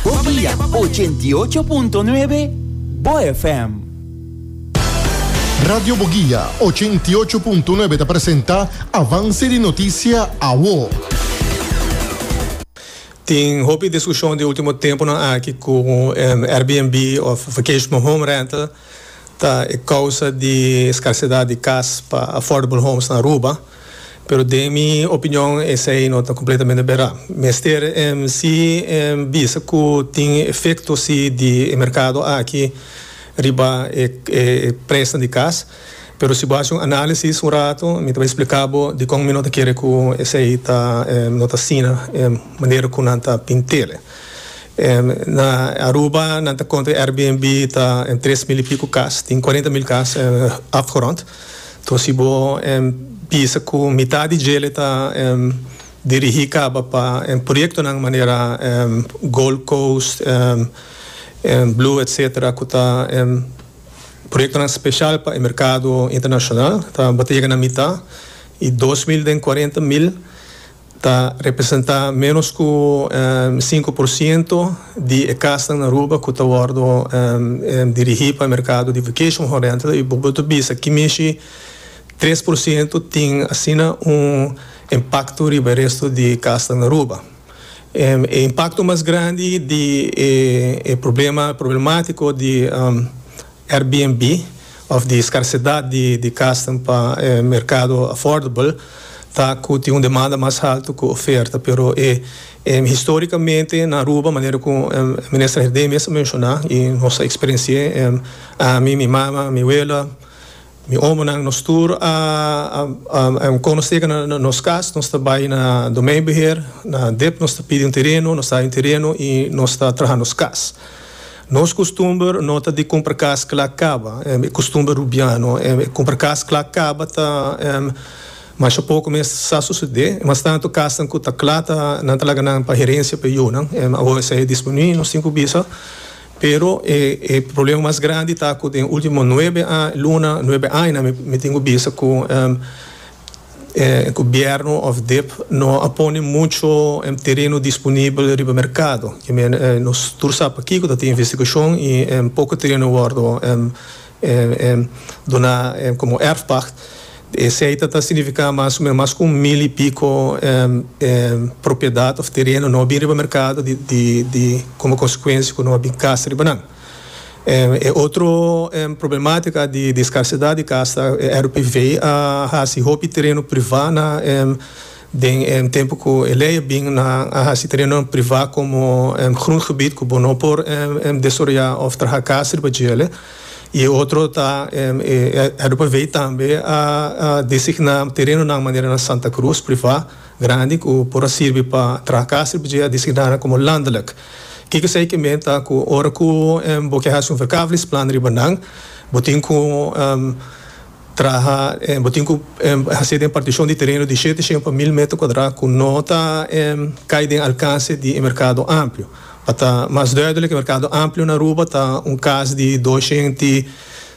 Bobia 88.9 BoyFm. Radio Bogia 88.9 ta presenta Avance di Noticia Awo. Tin hopi discusion di ultimo temponan aki cu Airbnb of vacation home rental. Ta e causa di escasidad di cas pa affordable homes na Aruba, pero den mi opinion esey no ta completamente bera. Mester si bisa cu tin efecto si di e mercado aki riba e presnan di cas, pero si bo haci un analisis un rato mi ta bay explica bo dicon mi no ta kere cu esey ta no ta asina manera cu nan ta pintele. Na Aruba nan ta konta Airbnb ta en tres mil y pico cas. Tin cuarenta mil cas afgerond. Toa si bo bisa cu mitad di djele ta dirigi caba pa proyectonan manera Gold Coast, Blue etc. Cu ta proyectonan special pa e mercado internacional. Ta bo ta yega na mitad y dos mil den cuarenta mil. Ta representá ménos ku sinku por siento di e kasnan na Aruba ku ta wòrdu dirigí pa e merkado di vacation home rental i bo por ta bisa ki mishi tres por siento tin asina un impakto riba e resto di kasnan na Aruba. E impakto mas grandi di e problema problemátiko di Airbnb of di scarcedad di casnan pa e mercado affordable ta cu tin un demanda mas alto cu oferta pero e historicamente na Aruba manera cu Minister Herdé mester a menciona y nos a experiencia ami, mi mama, mi wela. Mi omonan, nos tur a conoce cu na nos cas nos ta bay na domeinbeheer, na dep nos ta pidi un tereno, nos ta hay un tereno y nos ta traha nos cas. Nos costumber no ta di cumpra cas cla caba, e costumber Rubiano, e cumpra cas cla caba ta masha poco mes sa sucede, mas tanto casnan cu ta cla ta nan ta laga nan pa herencia pa e yunan, awor esey a disminui, nos tin cu bisa. Pero e e problema mas grandi ta cu den ultimo nuebe luna, nuebe aña mi mi tin cu bisa cu e gobierno of dip no a pone mucho tereno disponibel riba mercado. Nos tur sa pakico ta tin investigacion y poco tereno a wordo duna komo erfpacht. E seita ta signifiká mas o menos mas ku un mil i piko propiedat òf tereno no a bin riba merkado di komo konsekuensia ku no a bin kas riba nan. E otro problematika di skarsidat di kas ta RPV a hasi hopi tereno privá na. Den e tempu ku e lei a bin nan a hasi terenonan privá komo grondgebied ku bo no por desaroyá òf traha kas riba djel. I e otro ta e RPV tambe a designá terenonan manera na Santa Cruz, privá, grandi ku por a sirbi pa traha kas riba dje a designá nan komo landelijk. Kiko esei ke menta ku ora ku bo ke hasi un verkavelingsplan riba nan bo tin ku Traha bo tin ku hasi den partishon di tereno di shete shen pa mil meter kuadrá ku no ta kai den alkanse di e merkado amplio. Pa ta mas duidelik e merkado amplio na Aruba ta un kas di dos shent i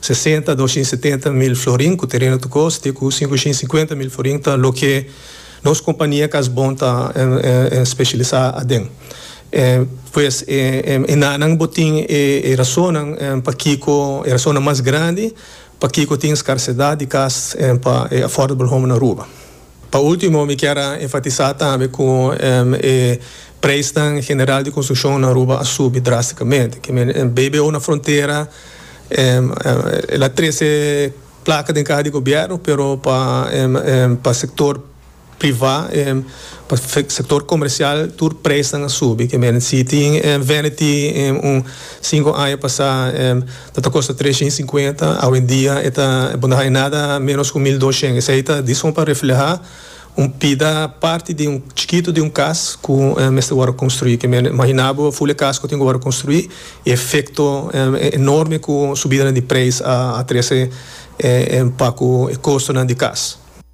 sesenta, dos shent i setenta mil florin ku tereno ta kos te ku sinku shent i sinkuenta mil florin ta loke nos kompania kas bon ta speshilisá aden. Pues e enanan bo tin e rasonnan pakiko e rasonnan mas grandi Pakico tin scarcedad di cas pa e affordable home na Aruba? Pa ultimo mi kier a enfatisa tambe cu e prijsnan general di construccion na Aruba a subi drasticamente. Kico men BBO na frontera el a trece placa den caha di gobierno pero pa sector. privá, pa sektor komersial tur presnan a subi ke meren si tin Vanity un sinku aña pasá lo ta kosta tres shen i sinkuenta awendia e ta bo no haya nada menos ku mil dos shen esei ta di son pa reflehá un pida parti di un chikitu di un kas ku mester wòrdu konstruí ke meren imaginá bo ful e kas ku tin ku wòrdu konstruí i efekto enorme ku subidanan di preis a trese pa ku e kostonan di kas.